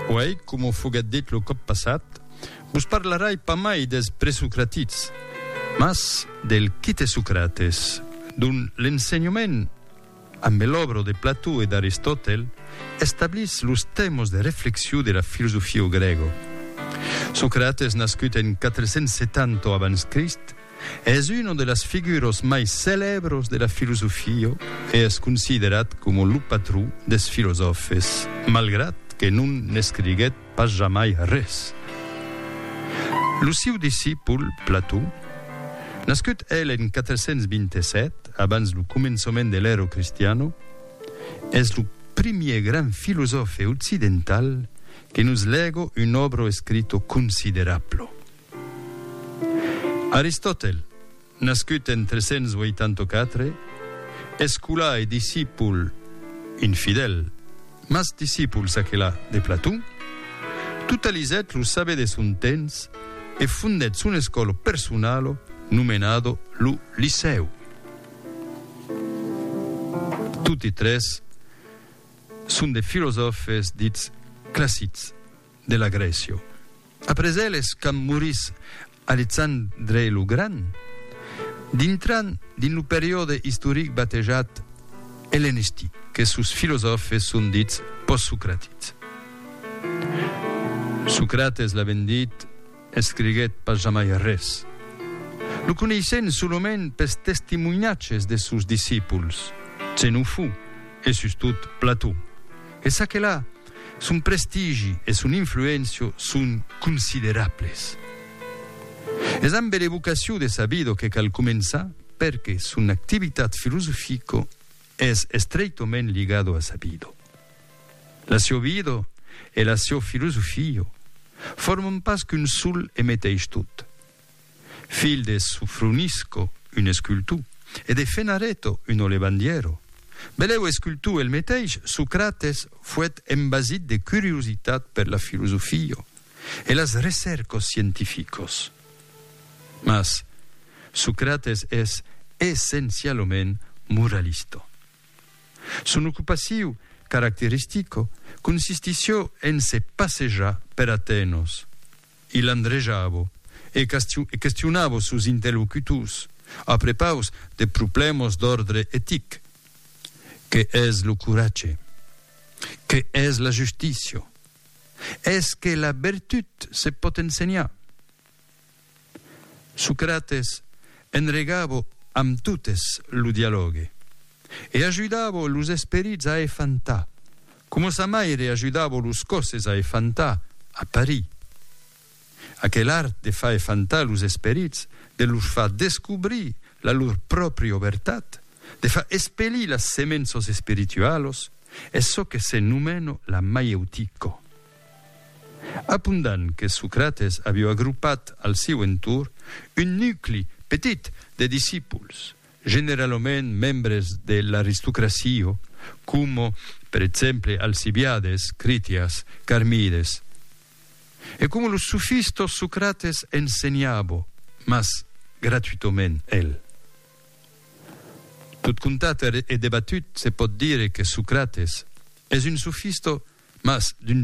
Puèi, coma foguèt dit lo còp passat, vos parlarai pas mai dels presocratits, mas del quite Socrates, dont l'ensenhament, ambe l'òbro de Plató e d'Aristòtel, establís los tèmos de reflexion de la filosofio grègo. Socrates nascut en 470 abans Crist, Es uno de las figuros mai celebros de la filosofio e es considerat coma lo patron des filosòfes, malgrat que non n'escriguèt pas jamai res. Lo siu discipol, Plató, nascut el en 427, abans lo començament de l'Ero Cristiano, es lo primier grand filosòfe occidental que nos lego un òbro escrito considerablo. Aristòtel, nascut en 384, escolà e discipul, un fidèl, mas discipul s'aquelà, de Platon, totalizèt lo saber de son temps e fondèt son escòlo personalo nomenado lo Licèu. Toti tres son de filosòfes dits classics. de l'agression. Après eles, quand morís Alexandre lo Grand, dintran dins lo periòde istoric batejat ellenistic, que sos filosòfes son dits postsocratics. Socrates l'aven dit. Escriguèt pas jamai res. Lo coneissèn solament pes testimonhatges des sòus discípuls, Xenofo e sustot Plató. E ça que la, son prestigi e son influéncia son considerables. Es ambe l'evocacion de Sabido que cal començar perque son activitat filosofica es estreitament ligada a Sabido. La siò vida e la siò filosofia forman pas qu'un sol e meteis tot. Filh de Sofronisco, un escultor, e de Fenareto, un olevandièro, belèu escultor el meteis, Socrates foèt embasit de curiositat per la filosofia e las recèrcas scientificas. Mas Socrates es essencialament moralista. Son ocupaciu caracteristico consistissió en se passejar per Atenos. Il andrejavo e questionavo sos interlocutors a prepaus de problèmas d'òrdre etic, qué es lo coratge? Qué es la justícia? Es que la vertut se pòt ensenhar? Socrates enregavo amb totes lo dialògue e ajudavo los esperits a efantar, coma sa maire ajudavo los còsses a efantar a Paris. Aquel art de far efantar los esperits, de los far descobrir la lor pròpri obertat, de far espelir las semenços espiritualos, es çò que se nomeno la maieutica. Apundan que Socrates avió agrupat al siu entorn un nucli petit de discipuls, generalament membres de l'aristocracia, coma per exemple Alcibiades, Critias, Carmides. E coma los sofistas Socrates ensenhava, mas gratuitament, el. Tot contat e debatut se pòt dire que Socrates es un sofista mas d'un.